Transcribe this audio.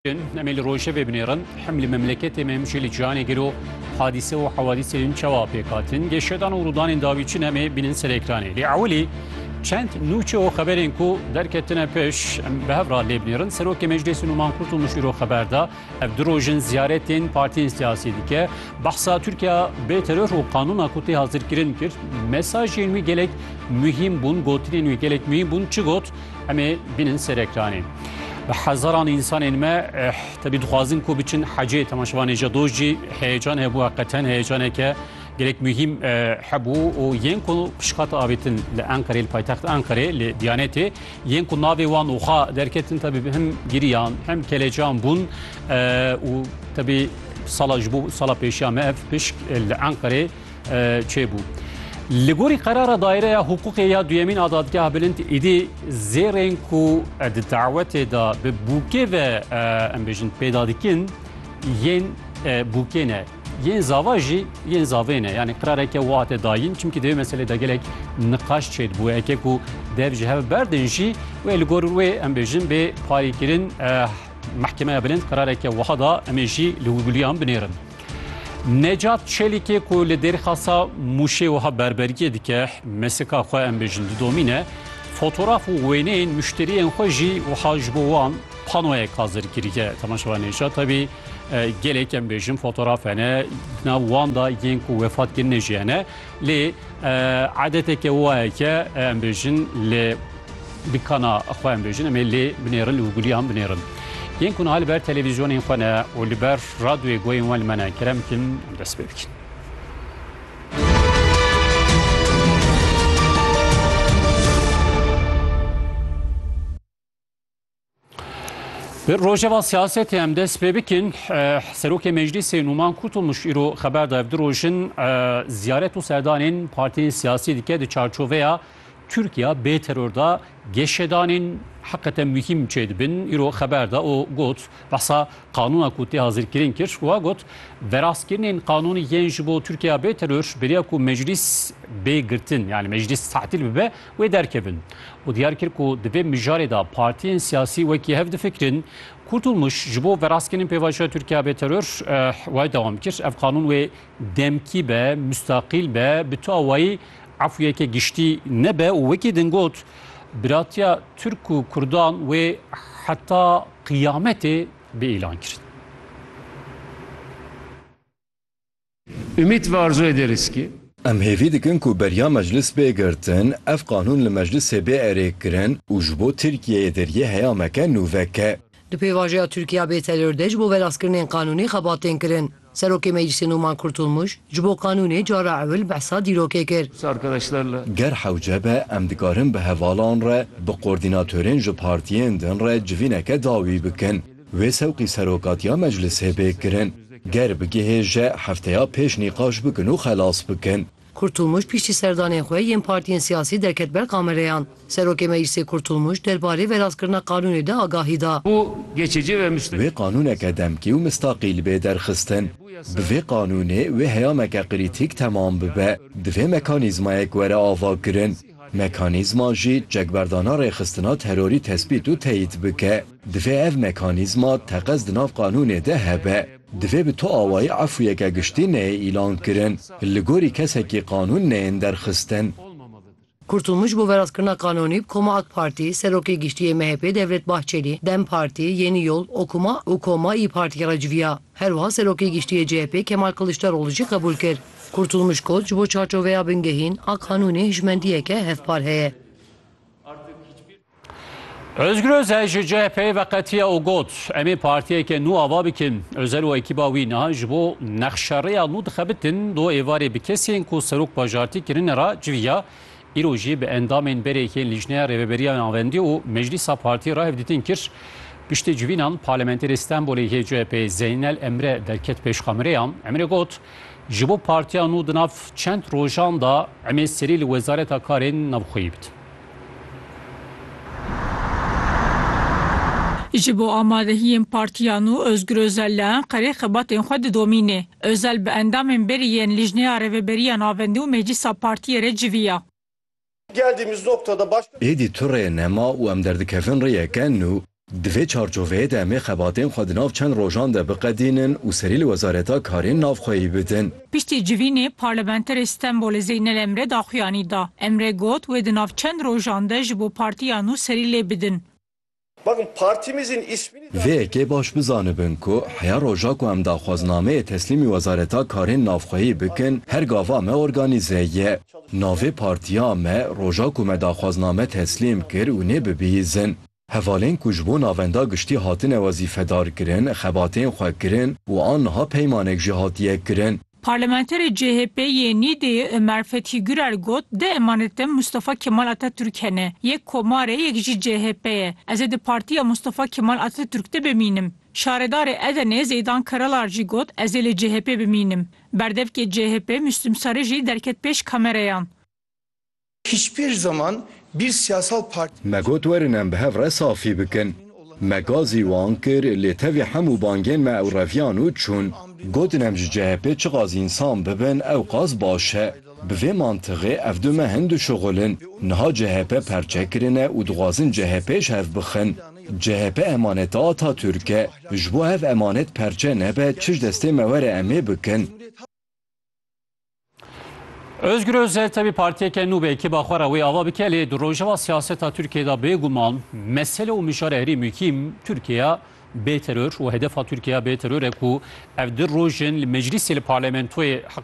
Em ê li rojevê binêrin hem li memleketê me hem jî li cihanê gelo hadîse û hewadîsê din çawa pêk hatin dê şedan û rûdanên dawî çin em ê bînin ser ekranê. Lê ewilî çend nûçe û xeberên ku derketine pêş em bi hev re lê binêrin. Serokê Meclîsê Nûman Kurtulmuş îro xeber da ev du roj in ziyaretên partiyên siyasî dike. Behsa Tirkiya bê teror û qanûna ku tê hazirkirin kir. Mesajên wî gelek muhîm bûn, gotinên wî gelek muhîm bûn. Çi got? Em ê bînin ser ekranê. Bi hezaran însanên me eh, tevî dixwazin ku biçin hecê temaşevanê ji doj jî heyecan hebû heqeten heyecaneke gelek muhîm eh, hebû û yên ku pişkata avêtin li Enqerê li paytext Enqerê li Diyanetê yên ku navê wan oxa derketin tevî bi hem giriyan hem kelecan bûn eh, û tevî sala ji bo sala pêşiya me ev pişk eh, li Enqerê çêbû. Li gorî qerara daîreya hiqûqê ya duyemîn a dadgeha bilind îdî zêrên ku di dawetê de bi bûkê ve em bêjin pêda dikin yên bûkê ne. Yên zava jî yên zavê ne yanî qirareke û hate dayîn çimkî divê meselê de gelek niqaş çêdibû eke ku dev ji hev berdin jî wê li gor wê em bêjin bê parîkirin mehkemeya bilind qirareke wiha da em ê jî li wî biliyan binêrin. Necat Çelîkê ku li Dêrxasa Mûşê wiha berberiyê dike, Mesika xwe em bêjin didomîne, fotoraf û wêneyên muşteriyên xwe jî wiha ji bo wan panoyek hazir kiriye. Temaşevan Necat tevî gelek em bêjin fotoraf hene, di nav wan de yên ku wefat kirine jî hene. Lê adeteke waye ke em bêjin lê dikana xwe em bêjin em ê lê binêrin û gulîyan binêrin. Yên ku niha li ber televîzyonên xwe ne û li ber radyoyê guhên wan li me ne kerem bikin em dest pê bikin. Li rojeva siyasetê em dest pê bikin serokê meclîsê Nûman Kurtulmuş îro xeber da ev du rojin ziyaret û serdanên partiyên siyasî dike di çarçoveya Tirkiya bê teror da geşedanên heqete muhîm çê dibin îro xeber da û got behsa qanûna ku tê hazirkirin kir wa got verastkirinên qanûnî yên ji bo Tirkiya bê teror beriya ku meclîs bê girtin yani meclîs tatil bibe wê derkevin û diyar kir ku di vê mijarê de partiyên siyasî wekî hev difikirin. Kurtulmuş ji bo verastkirîn pêvajoya Tirkiya bê teror way dewam kir, Ev qanûn wê demkî be, mustaqîl be, bi tu awayî efûyeke giştî nebe û wekî din got, Biratiya Tirk û Kurdan wê heta qiyametê bê îlankirin. Ümit ve arzu ederiz ki. Em hêvî dikin ku beriya meclis bê girtin, ev qanûn li meclisê bê erêkirin û ji bo Tirkiyeyê deriyê heyameke nû veke. Di pêvajoya Tirkiya bê teror de ji bo velazkirinên qanûnî xebat tên kirin. Serokê Meclisê Numan Kurtulmuş, ji bo qanûnê cara ewil behsa dîrokê kir. Ger hewce be em dikarin bi hevalan re, bi kordînatorên ji partiyên din re civîneke dawî bikin. Wê sewqî serokatiya meclisê bê kirin. Ger bigihê je hefteya pêş nîqaş bikin û xelas bikin. Kurtulmuş piştî serdanên xwe yên partiyên siyasî derket ber kamereyan. Serokê Meclisê Kurtulmuş derbarê verastkirina qanûnê de agahî da. Wê qanûneke demkî û mistaqîl bê derxistin. Bi vê qanûnê wê heyameke krîtîk temam bibe. Divê mekanîzmayek were avakirin. Mekanîzma jî çekberdana rêxistina terorî tespît û teyîd bike. Divê ev mekanîzma teqez di nav qanûnê de hebe. Divê bi tu awayî efûyeke giştî neyê îlan kirin, li gorî kesekî qanûn neyên derxistin. Kurtulmuş ji bo veraskirina qanûnî bi koma AK Partî, Serokê Giştî yê MHP'ê Devlet Bahçelî, Dem Partî, Yeni Yol, Okuma û Koma îyi Partî re civiya. Herwiha Serokê Giştî yê CHP'ê Kemal Kiliçdaroglu jî qebûl kir. Kurtulmuş got, ji bo çarçoveya bingehîn a qanûnê hişmendiyeke hevpar heye. Özgür Özel ji CHP'yê veqetiye û got, Em ê partiyeke nû ava bikin. Özel û ekîba wî niha ji bo nexşerêya nû dixebitin do êvarê bi kesên ku serok bajartî kirine re civiya, îro jî bi endamên berêkên Lîjneya Rêveberiya Navendî û Meclîsa Partiyê re hevdîtin kir. Piştî civînan Parlamenterê Stenbolê yê CHP'yê Zeynel Emre derket pêş kamereyan. Emre got, Ji bo partiya nû di nav çend rojan de em ê serî li Wezareta Karên Navxweyî bidim. Ji bo amadehiyên partiyan û Ozgur Ozel li Enqerê xebatên xwe didomîne. Ozel bi endamên berî yên Lijneya Rêveberiya Navendî û Meclisa Partiyê re civiya. Êdî tu rê nema û em derdikevin rêyeke nû. Di vê çarçoveyê de emê xebatên xwe di nav çend rojan de biqedînin û serî li Wezareta Karên Navxweyî bidin. Piştî civînê Parlamenterê Stenbolê Zeynel Emre daxuyanî da. Emre got wê di nav çend rojan de ji bo partiya nû serî lê bidin. Vê yekê baş bizanibin ku heya roja ku em daxwaznameyê teslîmî Wezareta Karên Navxweyî bikin her gava me organîze ye. Navê partiya me roja ku me daxwazname teslîm kir û nê bibihîzin. Hevalên ku ji bo navenda giştî hatine wezîfedarkirin, xebatên xwe kirin û aniha peymanek jî hatiye kirin. Parlamenterê CHP yê Nîdeyê Ömer Fethi Gürer got, Di emanet de Mustafa Kemal Atatürk hene. Yek komar e, yek jî CHP ye. Ez ê di partiya Mustafa Kemal Atatürk de bimînim. Şaredarê Edenê Zeydan Karalar jî got, Ez ê li CHP'ê bimînim. Berdevkê CHP'ê Müslüm Sarıcı derket pêş kamereyan. Hiçbir zaman bir siyasal parti. Me got werin em bi hev re safî bikin. Me gazî wan kir lê tevî hemû bangên me ew reviyan û çûn. Gotin em ji CHPê çi qas însan bibin ew qas baş e. Bi vê mantixê ev du mehên dişuxul in. Niha CHP perçe kirine û dixwazin CHPê ji hev bixin. CHP emaneta Atatürk e. Ji bo ev emanet perçe nebe çi ji destê me were em ê bikin. Özgür Özel tevî partiyeke nû be kiba xwe re wê ava bike lê di rojeva siyaseta Tirkiye de bêguman mesele û mijar herî muhîm Tirkiye bê teror û hedefa Tirkiye bê teror e ku ev di rojin li meclisê li parlamentoyê heq